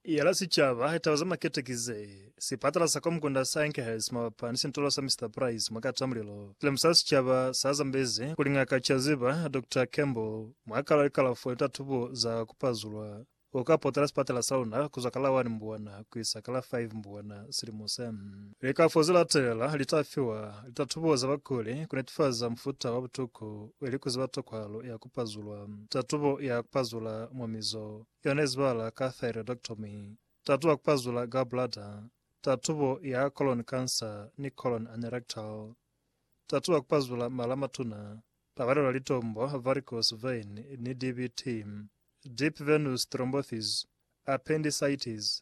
ya la sicaba ya taba za makete ki ze, sipatala sa Komkunda sa Enkhurst mabapa ni sintulo sa Mister Price mwa kata mulilo. Silimu sa sicaba sa zambezi kuli Ngaka Chaziba, Doctor Campbell, mwa kalo ya likalafo ni tatubo za ku pazulwa, u ka potela sipatala sa luna kuzwa ka la 1 Mbwana kuisa ka la 5 Mbwana silimu se. Likafo ze latela li ta fiwa litatubo za bakuli ku netifaza mufuta wa butuku ili ku ziba toko halo ya ku pazulwa. Tatubo ya ku pazula mwa mizo, yona izibahala ka thyroidectomy, tatubo ya ku pazula gallbladder, tatubo ya colon cancer ni colon anerectal. Tatubo ya ku pazula mala a matuna, a balelwa litombo, varicose vein, ni DVT, deep venous thrombosis, appendicitis,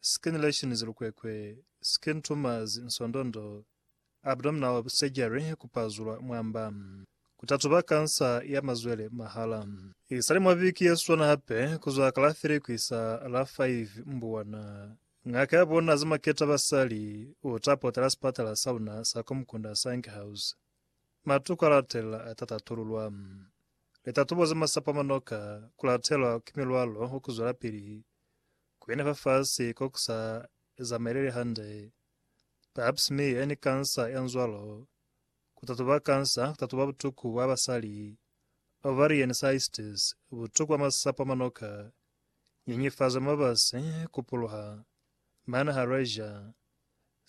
Scanulations Lukwekwe, Skin tumors, Nsondondo, abdominal surgery, ku pazulwa mwamba, ku tatuba kansa ya mazwele mahala. Isali mwa viki ye swana hape, ku zwa ka la 3 ku isa la 5 Mbuwana, ngaka ya bona za maketa basali u ta potela sipatala sa luna sa kwa Mukunda sa Enghouse. Matuku a latelela a ta tatululwa. Litatubo za masapo a manoka ku latelwa ki milwalo wa ku zwelapili Kukena fafasi ko ku sa zamaeleli hande, pap smear yani kansa ya nzwalo, ku tatuba kansa, ku tatuba butuku bwa basali, ovarian cystis, butuku bwa masapo a manoka, nyenyefazo ya mabasi, ku puluha, mana ha Rhazia,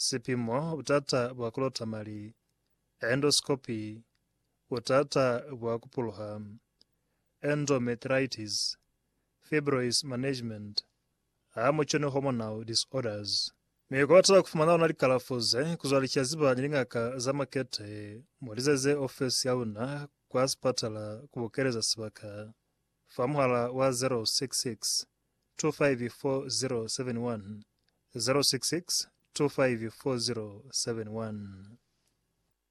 sipimo, butata bwa ku lota mali, endoscopy, butata bwa ku puluha, endometritis. fibroids management, a muconi hormonal disorders. Mi kubatela kufumana ona likalafo ze, kuzwa licaziba ni lingaka za makete, mulizeze ofesi ya luna kwa sipatala kubukeleza sibaka fa muhala wa 066 254071, 066 254071.